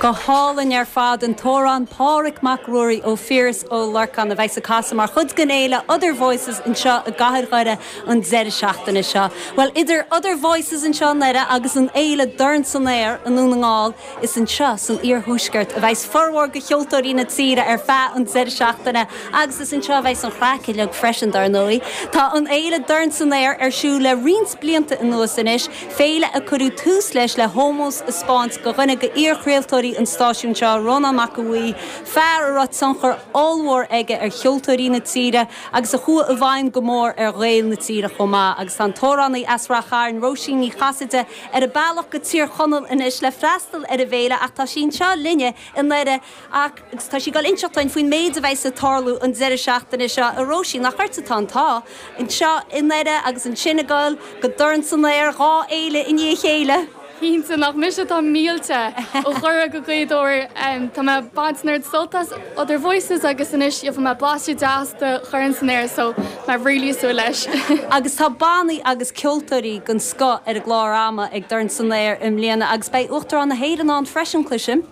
Go hálainn ar fad an t-amhrán 'Pádhraic Mac Ruairí' ó Phiaras Ó Lorcáin a bheas ag casadh mar chuid den fhéile 'Other Voices' anseo i gcathair Dhoire an deireadh seachtaine seo. Bhuel, idir 'Other Voices' anseo i nDoire agus an fhéile 'Dorn san Aer' i nDún na nGall, Is anseo san iarthuaisceart a bheas formhór de cheoltóirí na tíre ar feadh an deireadh seachtaine agus is anseo a bheas an chraic uilig freisin, dar ndóigh. Tá an fhéile Dorn San Aer ar siúl le roinnt blianta anuas anois, féile a cuireadh tús leis le hómós a spáint do dhuine d'iarchraoltóirí an stáisiúin seo, Rónán Mac Aoidh, fear a raibh tionchar ollmhór aige ar cheoltóirí na tíre agus a chuaigh i bhfeidhm go mór ar Ghaeil na tíre chomh maith. Agus tá an t-amhránaí as Rath Chairn, Róisín Ní Chasaide, ar a bealach go Tír Chonaill anois le freastal ar an bhféile ach tá sí anseo linne i nDoire agus tá sí ag dul inseacht dhúinn faoin méid a bheas ag tarlú an deireadh seachtaine seo. A Róisín, nach ort atá an t-ádh, anseo i nDoire agus ansin ag dul go Dorn san Aer, dhá fhéile i ndiaidh a chéile! Cinnte, nach mise atá millte! Ó Dhoire go Gaoth Dobhair, tá mé ag baint ard-sult as. Other Voices agus anois gheobhaidh mé blaiseadh deas de Dhorn san Aer so tá mé really ag súil leis. Agus tá bannaí agus ceoltóirí den scoth ar an gclár ama ag Dorn San Aer i mbliana agus beidh Uachtarán na hÉireann ann freisin, cloisim.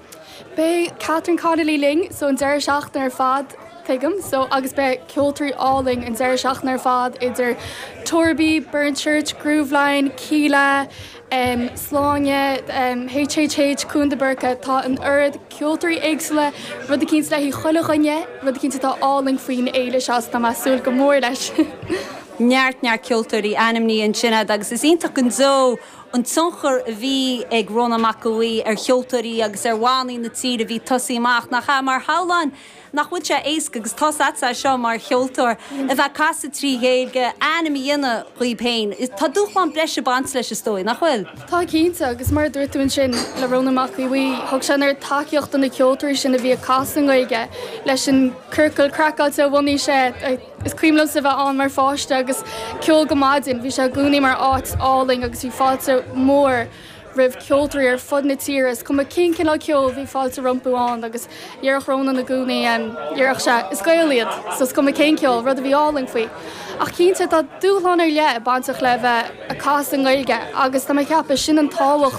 Beidh Catherine Connolly linn an deireadh seachtaine ar fad, tuigim, so agus beidh ceoltóirí álainn an deireadh seachtaine ar fad idir Torbaí, Burnchurch, Grooveline, Kíla, Sláine, Huartan, Cluain De Burca, tá an oiread ceoltóirí éagsúla, rud eicínt le haghaidh chuile dhuine, rud eicínt atá álainn faoin fhéile seo, is tá mé ag súil go mór leis. Neart, neart ceoltóirí, ainmnithe ansin agat agus is iontach go deo an tionchar a bhí ag Rónán Mac Aoidh ar cheoltóirí agus ar bhannaí na tíre a bhí ag tosaí amach, nach ea? Mar shamhlóinn Nach bhfuil sé éasca, agus tá's agatsa é seo mar cheoltóir, a bheith ag casadh trí Ghaeilge, ainm a dhéanamh díbh féin. Tá dúshlán breise ag baint leis is dóigh, nach bhfuil? Tá cinnte, agus mar a dúirt tú ansin le Rónán Mac Aodha Bhuí, thug sé an oiread tacaíocht do na ceoltóirí sin a bhí ag casadh i nGaeilge leis an ciorcal craiceáilte a bhunaigh sé. Is cuimhin liomsa a bheith ann mar pháiste agus ceol go maidin, bhí sé i gcónaí mar áit álainn agus bhí fáilte mhór. roimh ceoltóirí ar fud na tíre, is cuma cén cineál ceoil, bhí fáilte rompu ann agus dhéarfadh Rónán i gcónaí, dhéarfadh sé, 'Is Gaeil iad so is cuma cén ceol', rud a bhí álainn faoi. Ach cinnte, tá dúshlán ar leith bainteach le bheith ag casadh i nGaeilge agus tá mé ag ceapadh, sin an tábhacht,